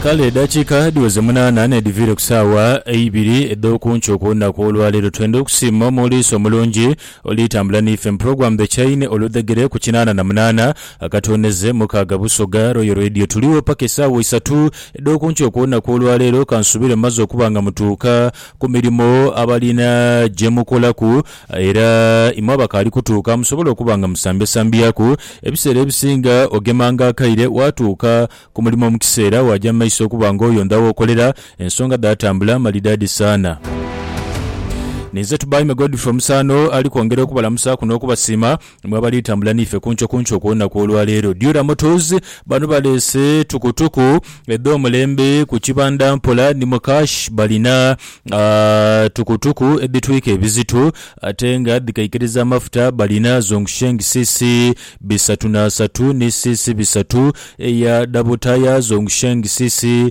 Kale edakiika dhiweze munaana n'edhiviire ku saawa eibiri edh'oku nkyo ku lunaku olwaleero, twendha okusiima Omuliisa omulungi oli tambula n'ife mu Program The Chain oludhegere ku kinaana na munaana akatoonheze mukaaga Busoga Royal Radio. Tuligho paka esaawa isatu edh'oku nkyo ku lunaku olwaleero. Kansuubire mumaze okuba nga mutuuka ku mirimo abalina gye mukolaku. Era imwe abakaali kutuuka musobole okuba nga musambyasambyaaku. Ebiseera ebisinga ogemanga akaire waatuuka ku mulimo mu kiseera waaja mu maiso okuba nga oyondha w'okolera. Ensonga dhaatambula malidaadi saana. Ninze Tubaime Godfrey Omusaano ali kwongera okubalamusaaku n'okubasiima. Mwe abali tambula n'ife kunco kunco okw'olunaku olwa leero, Dura Motors bano baleese tukutuku edh'omulembe ku kibanda mpola ni mu cash. Balina tukutuku edhitwika ebizito ate nga dhikaikiriza amafuta. Balina Zhongsheng CC bisatu n'asatu ni CC bisatu eya Double Tyre, Zhongsheng CC.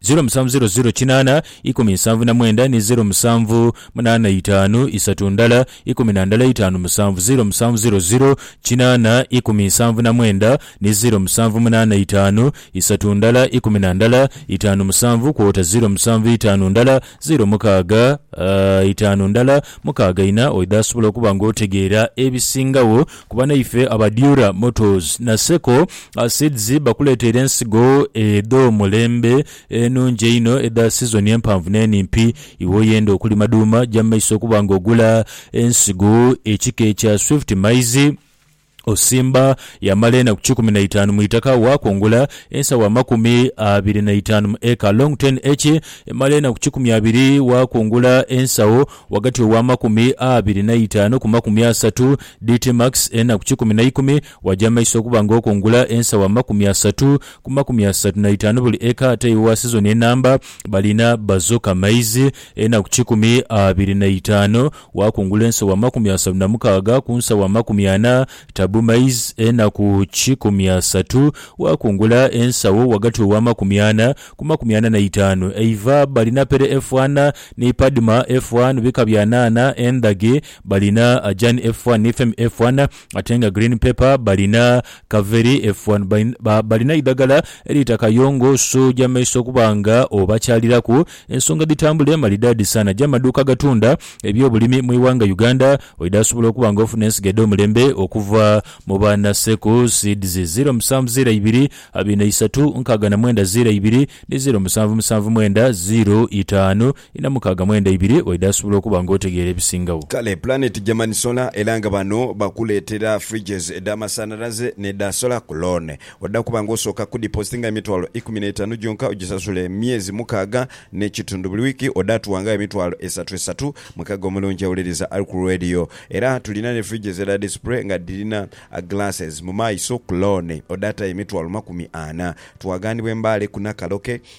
Zeero musanvu zeero zeero kinaana ikumi nsanvu na mwenda ni zeero musanvu munaana itaanu isatu ndala ikumi na ndala itaanu musanvu zeero musanvu zeero zeero kinaana ikumi nsanvu na mwenda ni zeero musanvu munaana itaanu isatu ndala ikumi na ndala itaanu musanvu kwota zeero musanvu itaanu ndala Zeero mukaaga itaanu ndala mukaaga ina oidha asobola okuba nga otegeera ebisingagho ku banaife aba Dura Motors na Seco Seeds bakuleteire ensigo edh'omulembe enungi einho edha sizoni empanvu n'enimpi. Iwe oyenda okulima dhuuma, ja mu maiso okuba nga ogula ensigo ekika ekya Swift Maize. Osimba yamala enaku kikumi na itaanu mu itaka waakungula ensawo amakumi abiri na itaanu mu eka. Longten Eki emala enaku kikumi abiri waakungula ensawo ghagati ow'amakumi abiri na itaanu ku makumi asatu. Dtmax enaku kikumi na ikumi waja maiso okuba nga okungula ensawo amakumi asatu ku makumi asatu na itaanu buli eka. Ate iwe owa sizoni enamba balina bazoka maizi enaku kikumi abiri na itaanu. Waakungula ensawo amakumi asatu na mukaaga ku nsawo amakumi ana, tabu maize enaku kikumi asatu. Waakungula ensawo ghagati ow'amakumi ana ku makumi ana na itaanu, eiva balinapere efu ana, ni padma efu an bika bya naana endhage, balinajani efu an ni femi efu ana. Ate nga green pepper balina kaveri efua ni balina eidhagala eriita kayongo so ja maiso okuba nga obakyaliraku ensonga dhitambule maridadi sana ja maduuka agatunda ebyobulimi mu ighanga Uganda oidha sobola okuba nga ofuna ensigo edhomulembe okuva mu ba Naseku seeds ziro musanvu ziro ibiri abiri na isatu nkaaga na mwenda ziro ibiri ni ziro musanvu musanvu mwenda ziro itaanu Inha mukaaga mwenda ibiri waidha asobola okuba nga otegeera ebisingagho. Kale Planet Germany Solar era nga bano bakuleetera fridges edh'amasanhalaze n'edha solar ku loan. Odha kuba nga osooka kudipositinga emitwalo ikumi n'etaanu gyonka ogisasula emyezi mukaaga n'ekitundu buli wiiki odha tuwangagho emitwalo esatu esatu. Mukaaga omulungi awuliriza ali ku Radio. Era tulina ni fridges edha display nga dhirina glasses mu maiso ku loan odha tayo emitwalo makumi ana. Twagaanibwa e Mbale ku Nakaloke.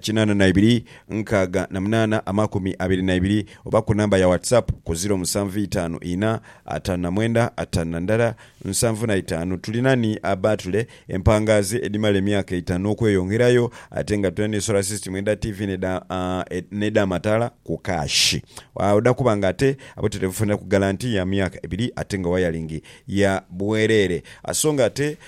kinaana na ibiri, nkaaga na munaana, amakumi abiri na ibiri, oba ku namba ya WhatsApp ku ziro musanvu itaanu ina, ataanu na mwenda, ataanu na ndala, nsanvu na itaanu. Tulina ni abaatule, empangaazi edhimala emyaka eitaanu n'okweyongerayo ate nga tulina ni solar system edha TV n'edh'amataala ku kaashi. Odha kuba nga ate abutereevu funira ku galanti ya myaka ebiri ate nga wayalingi ya bwereere. So nga ate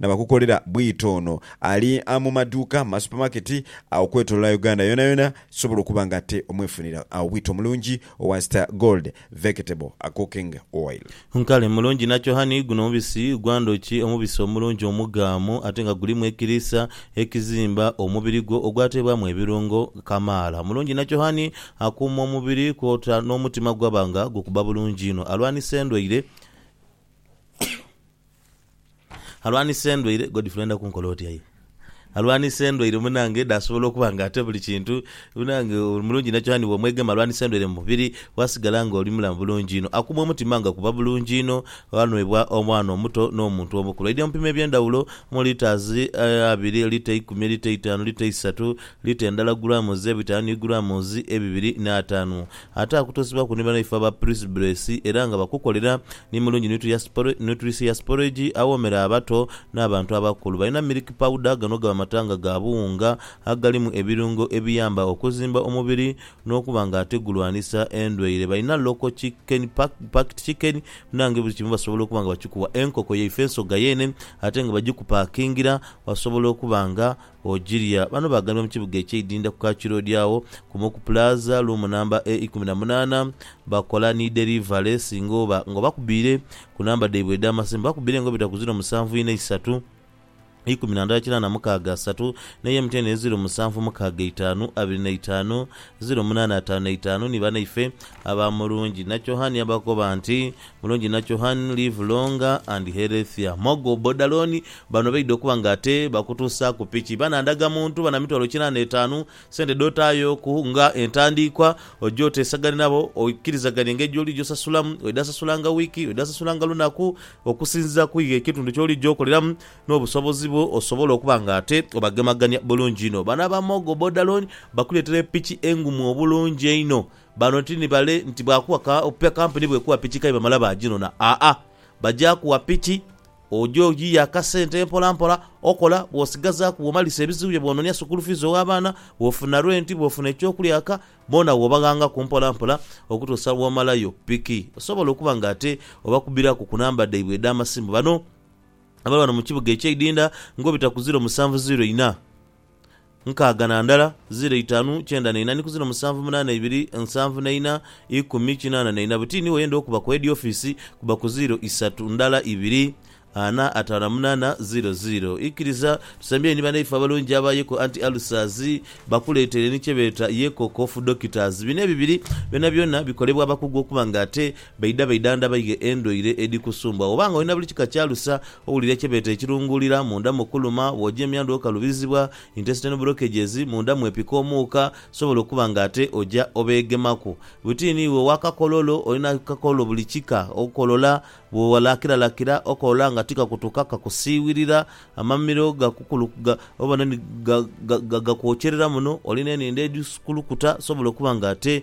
Nabakukolera bwito ono ali mu maduuka, mu masupamaketi agho okwetolola Uganda yonayona sobola okuba nga ate omwefunira agho bwito mulungi owa Star Gold Vectable Cooking Oil. Nkale mulungi nakyo honey, guno mubisi gwa ndhoki, omubisi omulungi omugaamu ate nga gulimu ekiriisa ekizimba omubiri gwo ogwateebwamu ebirungo kamaala. Mulungi nakyo honey akuuma omubiri kwota n'omutima gwaba nga gukuba bulungi inho, alwanisa endwaire. Alwanisa endwaire, Godfrey oyenda kunkola oti aye? Alwanisa endwaire munange dhasobola okuba nga ate buli kintu munange oli mulungi inho kyona ni bwomwegema alwanisa endwaire mu mubiri wasigala nga oli mulamu bulungi inho. Akuuma omutima nga kuba bulungi inho, ghanhwebwa omwana omuto n'omuntu omukulu. Aidha mu bipimo eby'endhaghulo omuli litres abiri, lita eikumi, lita eitaanu, lita eisatu, lita endala, grams ebitaanu ni grams ebibiri n'ataanu. Ate akutusibaku ni banaife aba Prisbresi era nga bakukolera ni mu lungi Nutrisi ya Sporage awoomera abato n'abantu abakulu. Balina Milk Powder, gano gaba matanga ga buwunga agalimu ebirungo ebiyamba okuzimba omubiri n'okuba nga ate gulwanisa endwaire. Balina Local Chicken Packed Chicken munange buli kimu basobola okuba nga bakikuwa. Enkoko yaife nsoga yeene ate nga bagikupakingira wasobola okuba nga Ogirya. Bano baagambibwa mu kibuga eky'e Idinda ku Kaki Road agho ku Moku Plaza, luumu namba e ikumi na munaana. Bakola ni derivale singa oba nga obakubiire ku namba dhaibwe edh'amasimu bakubiire nga obita ku ziro musanvu inha isatu, ikumi na ndala kinaana mukaaga asatu n'eya MTN eri ziro musanvu mukaaga itaanu, abiri na itaanu, ziro munaana ataanu na itaanu ni banaife aba Mulungi Nachohania bakoba nti Mulungi Nachohan, Live Longer and Healthier Mogo Bodaloni, Bano baidha okuba nga ate bakutuusaaku piki, bana ndaga muntu, bana mitwalo kinaana etaanu, sente dh'otaayoku nga entandiikwa, oje oteesagane nabo oikirizagane engeri gy'oligya osasulamu, oidha sasulanga wiiki, oidha sasulanga lunaku okusinziira ku iwe ekitundu ky'oligya okoleramu n'obusobozi bwo osobole okuba nga ate obagemagania bulungi inho. Bano aba Mogo Bodaloni bakuleetera epiki engumu obulungi einho Bano ti ni bale nti baakuwa ka ope kampuni bw'ekuwa piki k'aye bamala baaginona. Aa-a. Baja kuwa piki, oja oyiya akasente mpolampola, okola, bw'osigazaaku, bw'omalisa ebizibu byo, bw'ononia sukuulu fiizi ow'abaana, bw'ofuna renti, bw'ofuna eky'okulya eka, boona w'obaghangaku mpolampola okutuusa lw'omalayo piki. Osobola okuba nga ate obakubiraku ku namba dhaibwe edh'amasimu. Bano abali ghano mu kibuga eky'eidinda ng'obita ku ziiro musanvu ziiro ina. nkaaga na ndala, ziro itaanu, kyenda na ina ni ku ziro musanvu munaana ibiri, nsanvu na ina, ikumi, kinaana na ina. Bwe tiini w'oyenda okuba ku heedi ofiisi, kuba ku ziro isatu, ndala ibiri, ana, ataano na munaana, ziro ziro. Ikiriza tusembyeyo ni banaifo abalungi aba Yeko Anti Ulcers bakuleetere ni kye beeta Yeko Cough Doctors. Bino ebibiri byonabyona bikolebwa abakugu okuba nga ate Baidha baidhandha baighe endwaire edhikusumbuwa. Bw'oba nga olina buli kika kya alusa, owulira kye beeta ekirunguulira, munda mu kuluma, bw'oja emyandhu okalubizibwa, intestinal blockages, munda mwepika omuuka, sobola okuba nga ate oja obeegemaku. Buti ni iwe owa kakololo, olina akakololo buli kika, okolola, bw'owalakiralakira okolola nga tikakutuka, kakusiiwirira, amamiro gakukulu, ga, obona ni, ga, ga, ga, gakwokyerera muno, olina enindho edhikulukuta, sobola okuba nga ate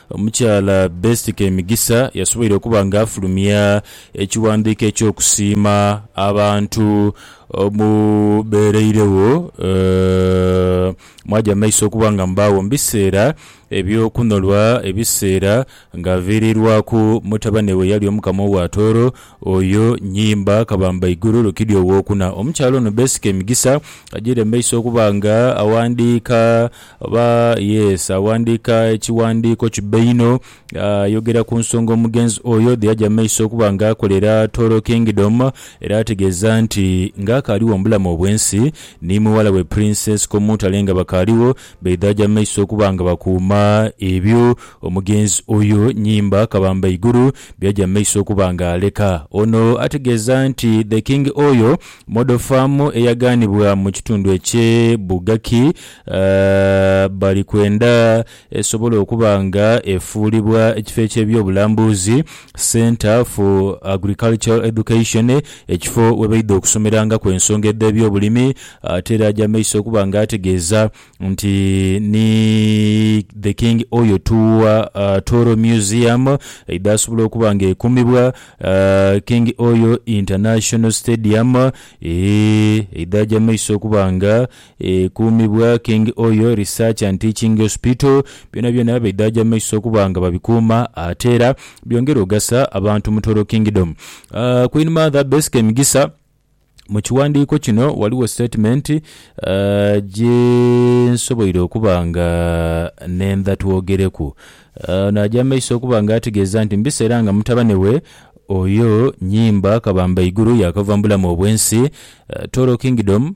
Omukyala Best Kemigisa yasoboire okuba nga afulumya ekighandiiko eky'okusiima abantu omu beereiregho mwaja mu maiso okuba nga mubaagho mu biseera eby'okunolwa ebiseera nga viirirwaku mutabane we eyali Omukama owa Tooro oyo Nyimba Kabambaiguru Rukidi Owokuna. Omukyala ono Best Kemigisa agiire mu maiso okuba nga aghandiika. Oba, yes, aghandiika ekighandiiko kibe inho, ayogera ku nsonga omugenzi oyo dhe yaja mu maiso okuba nga akolera Toro Kingdom, era ategeeza nti, Ng'akaaligho mu bulamu obw'ensi, ni mughala we Princess Komutale nga bakaaligho, baidha aja mu maiso okuba nga bakuuma ebyo omugenzi oyo, Nyimba Kabambaigulu, bye yaja mu maiso okuba nga aleka. Ono ategeeza nti The King Oil Model Farm eyagaanibwa mu kitundu eky'e Bugaki, bali kwenda esobole okuba nga efuulibwa ekifo eky'ebyobulambuzi, Centre for Agricultural Education, ekifo we baidha okusomerangaku ensonga edh'ebyobulimi. Ate era aja mu maiso okuba nga ategeeza nti ni The King Oyo Tuwa Toro Museum eidha asobola okuba nga ekuumibwa, King Oyo International Stadium eidha aja mu maiso okuba nga Ekuumibwa King Oyo Research and Teaching Hospital, byonabyona bidhaja mu maiso okuba nga babikuuma ate era byongera ogasa abantu mu Toro Kingdom. Queen Mother Besike Migisa, Mu kiwandiiko kino ghaligho statement gye nsoboire okuba nga nendha twogereku. Ono aja mu maiso okuba nga ategeeza nti mu biseera nga mutabane we Oyo Nyimba Kabambaiguru yaakava mu bulamu obw'ensi, Toro Kingdom,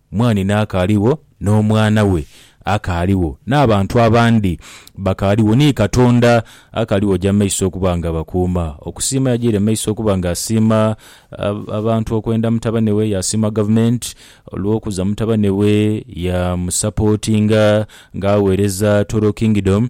Mwanhina akaaligho, n'omwana we akaaligho, n'abantu abandi bakaaligho, ni Katonda akaaligho oja mu maiso okuba nga abakuuma. Okusiima yajaire mu maiso okuba nga asiima abantu okwenda mutabane we, yaasiima gavumenti olw'okuza mutabane we yaamusapootinga ng'agheereza Toro Kingdom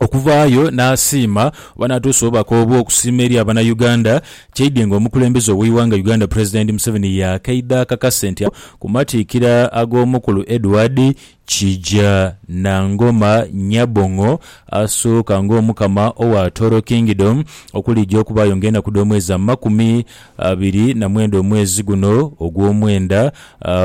okuvaayo n'asiima oba n'atuusa obubaka obwo okusiima eri abana Uganda kyaidhe nga omukulembeze oweighanga Uganda President Museveni yakaidha akakase nti ku matiikira ag'omukulu Edward Kija Nangoma Nyabong'o asooka ng'omukama owa Toro Kingdom okulija okubaayo ng'enaku dh'omwezi amakumi abiri na mwenda omwezi guno ogw'omwenda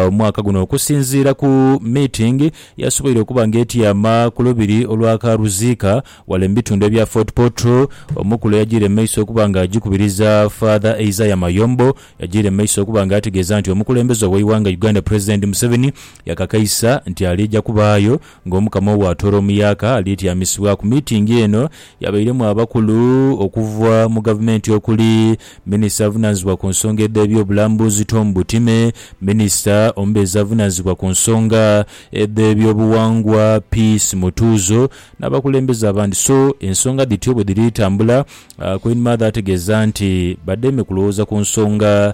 omwaka guno okusinziira ku meeting yasoboire okuba nga etyama ku lubiri olwa Karuziika wale mu bitundu ebya Fort Portal Omukulu yajiire mu maiso okuba nga ajikubiriza Father Isaiah Mayombo yajiire mu maiso okuba nga ategeeza nti omukulembeze ow'eighanga Uganda President Museveni yakakaisa nti aliija kubaayo Ng'Omukama obw'atoola omuyaaka alyetyamisibwa ku miitingi eno yabairemu abakulu okuva mu Gavumenti okuli, Minisita avunaanizibwa ku nsonga edh'ebyobulambuzi Tom Butime, Minisita omubeezi avunaanizibwa ku nsonga edh'ebyobuwangwa Peace Mutuuzo n'abakulembeze abandi so ensonga dhityo bwe dhiri tambula. Queen Mother ategeeza nti badheeme kulowooza ku nsonga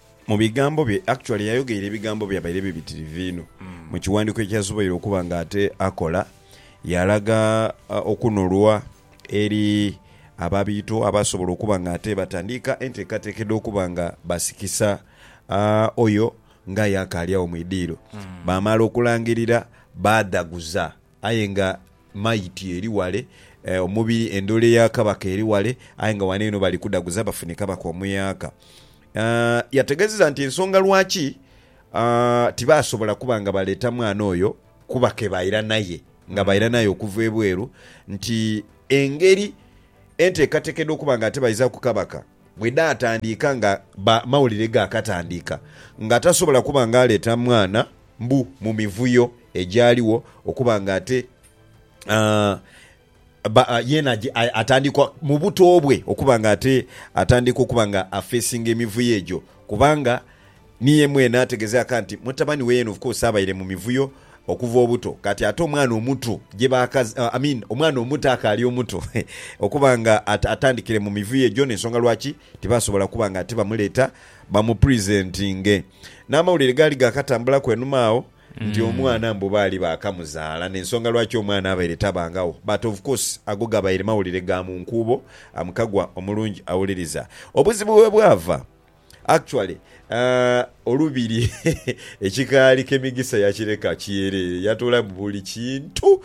Mu bigambo bye, actually yayogeire ebigambo byabaire bibitirivu inho mu kiwandiiko ekyasoboire okuba nga ate akola, yaalaga okunolwa eri ababiito abaasobola okuba nga ate batandiika enteekateeka edh'okuba nga basikisa oyo ng'aye akaali agho mu idiiro. Baamala okulangirira baadhaguza. Aye nga mayiti eri wale, omubiri, endhole ya kabaka eri wale, aye nga wano eno bali kudhaguza bafune kabaka omuyaaka. Yategeezeza nti ensonga lwaki tibaasobola kuba nga baleeta mwana oyo kuba ke baira naye nga baira naye okuva ebweru nti engeri enteekateeka edh'okuba nga ate baizaaku kabaka, Bwe dhaatandiika nga ba mawulire gaakatandiika nga tasobola kuba nga aleeta mwana mbu mu mivuyo egyaliwo okuba nga ate ba yeena atandikwa mu buto bwe okuba nga ate atandika okuba nga afeesinga emivuyo egyo kubanga Niye mwene ategeze aka nti mutabani we yena of course abaire mu mivuyo okuva obuto kati ate omwana omutu gyebakaz I mean omwana omuto akaali omuto okuba nga atandikire mu mivuyo egyo nensonga lwaki tibasobola kuba nga ati bamuleeta bamu presentinge N'amawulire gaali gaakatambulaku enhuma agho nti omwana mbu baali baakamuzaala nensonga lwaki omwana abaire tabangagho but of course ago gabaire mawulire ga mu nkuubo am kagwa omulungi awuliriza obuzibu webwava. Actually olubiri ekikaali kemigisa yakireka kyerere yatoola mu buli kintu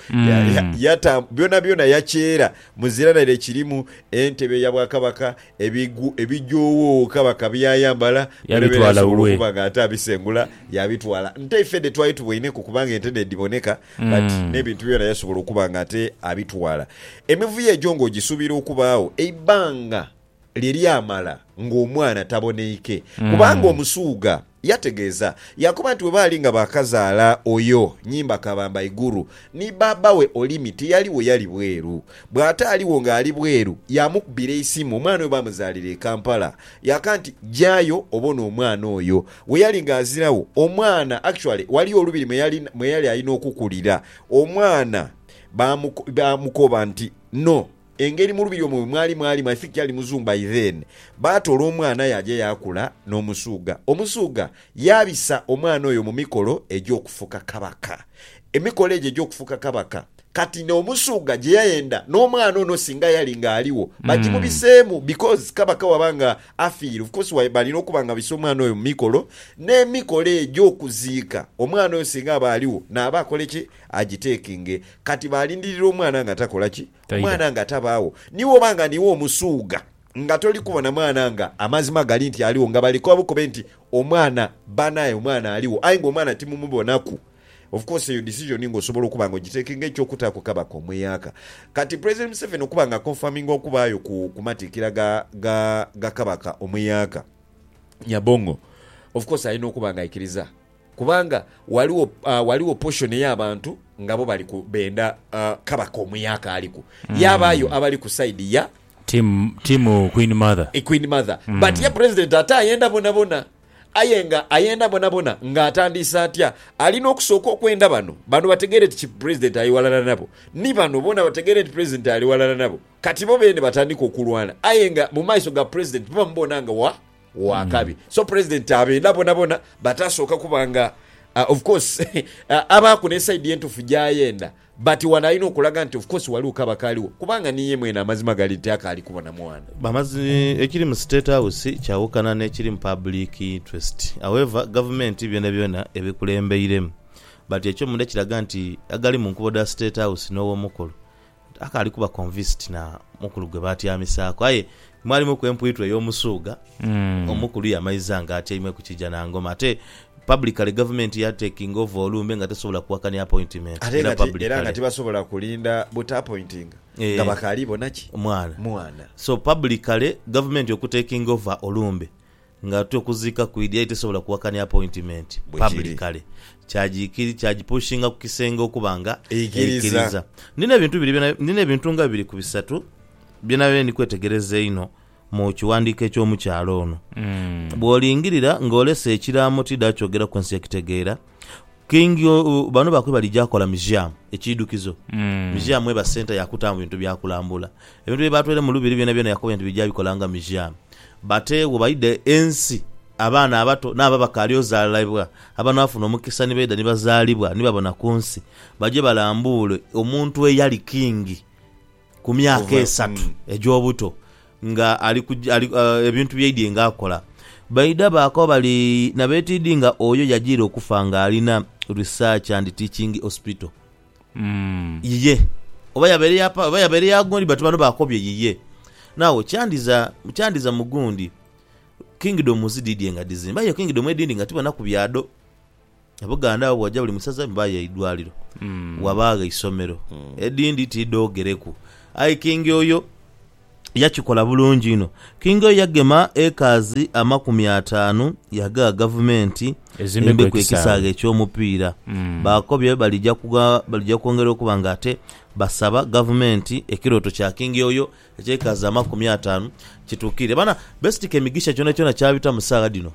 yata byona byona yakyera muzira naire kirimu entebe ya bwakabaka ebigu ebijowoowo kabaka byayambala bwerebeera asobola okuba nga ate abisengula yabitwala nte ife dh'etwali tuboineku kubanga ente nedhiboneka but n'ebintu byona yasobola okuba nga ate abitwala emivuyo egyo nga ogisubira okubaagho eibanga lye lyamala ng'omwana taboneike, kubanga Omusuugha yategeeza yaakoba nti bwe baali nga baakazaala oyo nnyimba kabamba Iguru, ni bbaabba we Olimi tiyaligho yali bweru. Bw'ataaligho ng'ali bweru, yaamukubira eisimu omwana oyo baamuzaalira e Kampala. Yaaka nti, Jayo obone omwana oyo. Bwe yali ng'aziragho, omwana actually ghaliyo olubiri mwe yali mwe yali alina okukulira. Omwana baamuko baamukoba nti, No. Engeri mu lubiri omwo bwe mwali mwali my think yali muzungu by then, baatoola omwana yaaja yaakula n'Omusuuga. Omusuuga yaabisa omwana oyo mu mikolo egy'okufuka Kabaka. Emikolo egyo egy'okufuka Kabaka kati n'Omusuuga gye yayenda n'omwana ono singa yali nga aligho bagimubiseemu because Kabaka waba nga afiire of course wa balina okuba nga babisa omwana oyo mu mikolo. N'emikolo egy'okuziika omwana oyo singa aba aligho naaba akole ki? Agitekinge. Kati baalindirira omwana nga takola ki? Taidha. Omwana nga tabaagho. Ni bw'oba nga niiwe omusuugha, nga toli kubona mwana nga amazima gali nti aligho, nga bali kobe nti omwana baana aye omwana aligho aye ng'omwana timumubonaku, of course eyo decision nga osobola okuba nga ogiteeke nga eky'okutaaku kaba komweaka. Kati President Museveni okuba nga aconfirminga okubaayo ku ku matikkira ga ga ga Kabaka omweaka Nyabong'o, of course alina okuba nga aikiriza. Kubanga ghaligho, ghaligho portion ey'abantu nga bo bali ku, benda Kabaka omuya akaaliku. Yaabaayo abali ku side ya. Team, team Queen Mother. Queen Mother. But ye President ate ayenda bonabona. Aye nga ayenda bonabona nga atandiise atya? Alina okusooka okwenda bano, bano bategeere nti ki President ali ghalala nabo. Ni bano boona bategeere nti President ali ghalala nabo. Kati bo beene batandike okulwana. Aye nga mu maiso ga President bo bamubona nga wa. wa kabi. So president abenda bona bona but asooka kuba nga Uh, of course abaaku ne side entufu gyayenda but wano alina okulaga nti of course waliwo kaba kaaliwo kubanga niye mwene amazima gali nti akaali kubona mwana Amazi, ekiri mu State House kyawukana n'ekiri mu public interest. However, gavumenti byonabyona ebikulembeiremu but ekyomunda kiraga nti agali mu nkuubo dha State House n'Owomukulu Akaali kuba convinced na mukulu gwe baatyamisaaku. Aye mwalimuku empwitwa ey'omusuugha. Omukulu yamaiza nga atyaime ku kiija na ngoma. Ate publicly gavumenti ya takinga over olumbe nga tesobola kuwakania appointment Ate era nga ti, era nga publicly. tibasobola kulinda buta appointinga nga Eeh. bakaali bona ki? Mwana. Mwana. So publicly gavumenti okutakinga over olumbe. Ng'ate okuziika kwidhi aye tesobola kuwakania apointimenti pabulikale. Kyagikiri, kyagipushinga ku kisenge okuba nga Eikiriza. Ndina ebintu biri byona, ndina ebintu nga bibiri ku bisatu bye nabaire ndi kwetegereza einho mu kiwandiiko eky'omukyala ono. Bw'olingirira ng'olese ekiraamo ti dha kyogeraku nsi ekitegeera, King bano bakoba balija kola museum ekidhukizo museum eba centre ya kutamu bintu bya kulambula. Ebintu bye batweire mu lubiri byona byona yakobere nti bija bikola nga museum but wo baidha ensi abaana abato nabo abakali ozalibwa abanafuna omukisa ni baidha ni bazalibwa ni babona kunsi baje balambule omuntu eyali king. ku myaka esatu egy'obuto nga ali ku ali, uh, ebintu byaidye nga akola. Baidha baakoba bali na betiidhi nga oyo yajiire okufa nga alina Research and Teaching Hospital. Yiye. Oba yabaire ya pa, oba yabaire ya gundi but bano baakobye yiye. Now, kyandiza, kyandiza mu gundi, Kingdoms dhidhye nga dhizimba aye Kingdom edhindi nga tibonaku bya dho. E Buganda agho bw'oja buli mu saza mubaayo eidwaliro, wabaagho eisomero, edhindi ti dhoogereku. Aye Kingi oyo yakikola bulungi inho. Kingi oyo yagema ekaazi amakumi ataanu yaagha Gavumenti Ezimbeku embeku ekisaawe. ekisaawe eky'omupiira. Baakobye balija kugha balija kwongera okuba nga ate basaba Gavumenti ekirooto kya Kingi oyo eky'ekaazi amakumi ataanu kituukirire. Bana, beesitika emigisha kyonakyona ky'abitamu saagha dhino.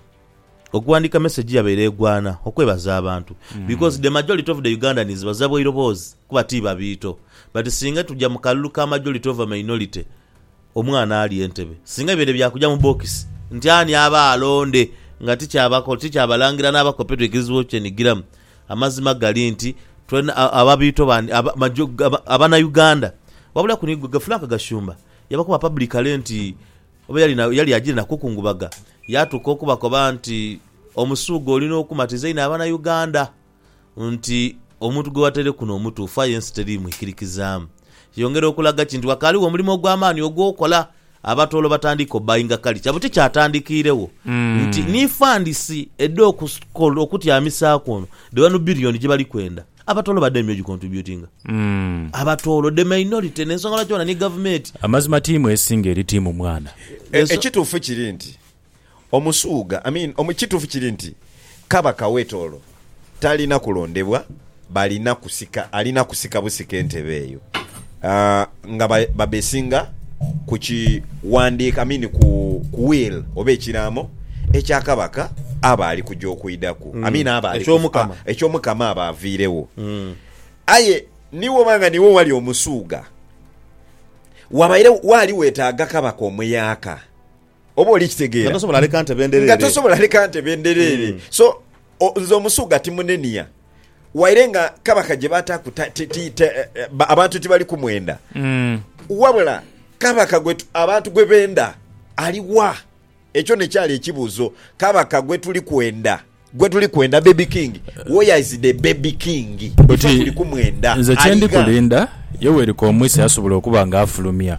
Okuwandiika message yabaire egwana okwebaza abantu because the majority of the Ugandans baza bwairobozi kuba ti babiito but singa tuja mu kalulu ka majority over minority omwana ali entebe singa bibaire bya kuja mu bokisi nti ani aba alonde nga tikyabalangira n'abakopi twikiriziibwa okukyenigiramu amazima gali nti twena ababiito bandi abanauganda wabulaku ni gwe Frank Gashumba yabakoba publicly nti Oba yali ajiire na kukungubaga yaatuuka okubakoba nti, Omusuugha oli n'okumatiza einho Abanauganda nti omuntu gwe wataire kuno mutuufu aye ensi teri mwikirikizaamu. Yongera okulaga ki nti wakaaligho omulimo ogw'amaani ogw'okola abatoolo batandike obbayinga kalicha buti kyatandikiiregho nti ni fandisi edha okutyamisaaku ono dhe wanu bbiriyoni gye bali kwenda. Abatoolo ba daimyo gikontributinga. Abatoolo the minority nensonga lwaki onani gavumeti. Amazima tiimu esinga eri tiimu mwana. Ekitufu kiri nti omusuuga I mean ekitufu kiri nti kabaka we tooro talina kulondebwa balina kusika alina kusika busika entebe eyo nga babeesinga ku kiwandiiko, I mean ku will oba ekiraamo ekya kabaka aba ali kuja okwidhaku, I mean aba ali Eky'Omukama. ah, eky'Omukama aba aviiregho. Aye ni bwoba nga niiwe owali Omusuugha, wabaire waali wetaaga kabaka omuyaaka. Oba oli kitegeera? Nga tosobola leka nte bendereere. Nga tosobola leka nte bendereere. Mm. So, o, nze omusuga timunenia. Waire nga kabaka gye bataaku ta, ti, ti, te, eh, eh, ba- abantu tibali kumwenda. Mm. Wabula kabaka gwe tu- abantu gwe benda aliwa? Ekyo nekyali ekibuuzo. Kabaka gwe tuli kwenda Gwe tuli kwenda baby king where is the baby king ife tuli kumwenda Nze kyendi aligha. kulinda Yoweri Kaumwisa yasobola okuba nga afulumya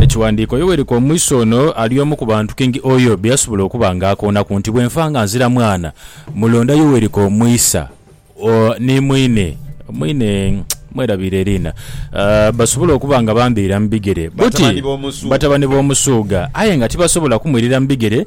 ekiwandiiko Yoweri Kaumwisa ono ali omu ku bantu King Oyo be yasobola okuba nga akoonaku nti bwe nfa nga nzira mwana mulonda Yoweri Kaumwisa o ni mwine mwine mwerabiire eriina basobole okuba nga bambiira mu bigere buti Batabani b'omusuuga. batabani b'omusuuga aye nga tibasobola kumwirira mu bigere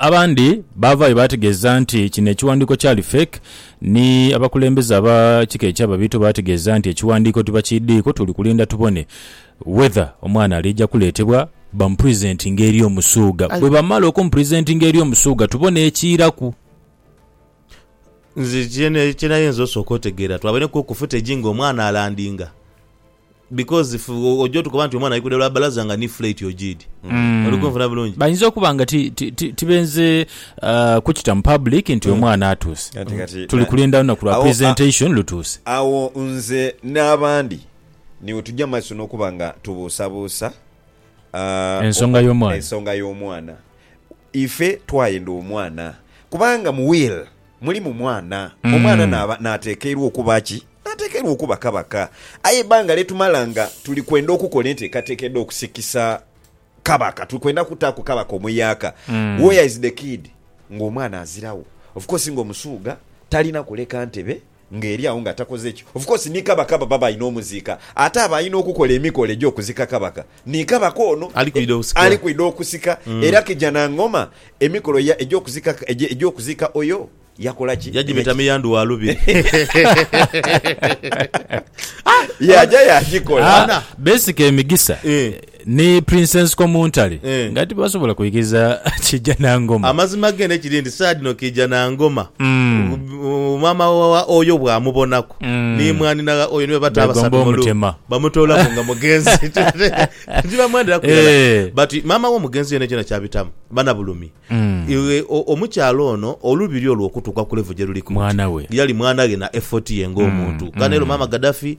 abandi baavaayo baategeeza nti kino ekiwandiiko kyali fake ni abakulembeze aba kika eky'Ababiito baategeeza nti ekiwandiiko tibakiidhiiko tuli kulinda tubone whether omwana aliija kuleetebwa bamupresentinge eri Omusuuga. Aye. Bwebamala okumupresentinga eri Omusuuga tubone ekiiraku. Nze kye kye nayinza osooka otegeera twabaineku ku footage ng'omwana alandinga. Because if oja otukoba nti omwana ali kuda lwa bbalaza nga ni flight ojiidhi. Mm. Oli kunfuna bulungi? Bayinza okuba nga ti- ti- ti- tibenze uh, kukita mu public nti omwana atuuse. Kati kati Tuli na- kulinda lunaku lwa Awo, a- presentation lutuuse. Agho nze n'abandi ni we tugya mu maiso n'okuba nga tubuusabuusa ah, Ensonga oku- y'omwana. Ensonga y'omwana. Ife twayenda omwana kubanga mu will Muli mu mwana, omwana naaba, naatekeirwa okuba ki? Naatekeirwa okuba kabaka. Aye eibanga lye tumala nga tuli kwenda okukola enteekateeka edh'okusikisa kabaka, tuli kwenda kutaaku kabaka omuyaaka. Where is the kid? Ng'omwana aziragho. Of course ng'Omusuuga talina kuleka ntebe nga eri agho nga takoze kyo. Of course ni Kabaka baba balina omuziika ate aba alina okukola emikolo egy'okuzika Kabaka ni Kabaka ono ali kwidha okusika era Kijana Ngoma emikolo egy'okuzika oyo yakola ki? Yagibeta miyandhu wa lubiri. Yaja yagikola. Basically Migisa. Ni Princess Komuntale Eh. nga tibasobola kwikiriza Kiija Nangoma. Amazima gene kiri nti saha dhino Kiija Nangoma Mm. uh, maama wa Oyo bwamubonaku Mm. ni mwanhina gha Oyo nibo bata Begomba abasatu mu lu- omutema. bamutoolaku nga mugenzi tibamwenderaku irala Eh. but maama w'omugenzi yena kyona kyabitamu bana bulumi Mm. Iwe, o- omukyala ono olubiri olwo okutuuka ku level gyeruliku Mwana we. yali mwana ghe na effort ye ng'omuntu Mm, kale mm. ero maama Gaddafi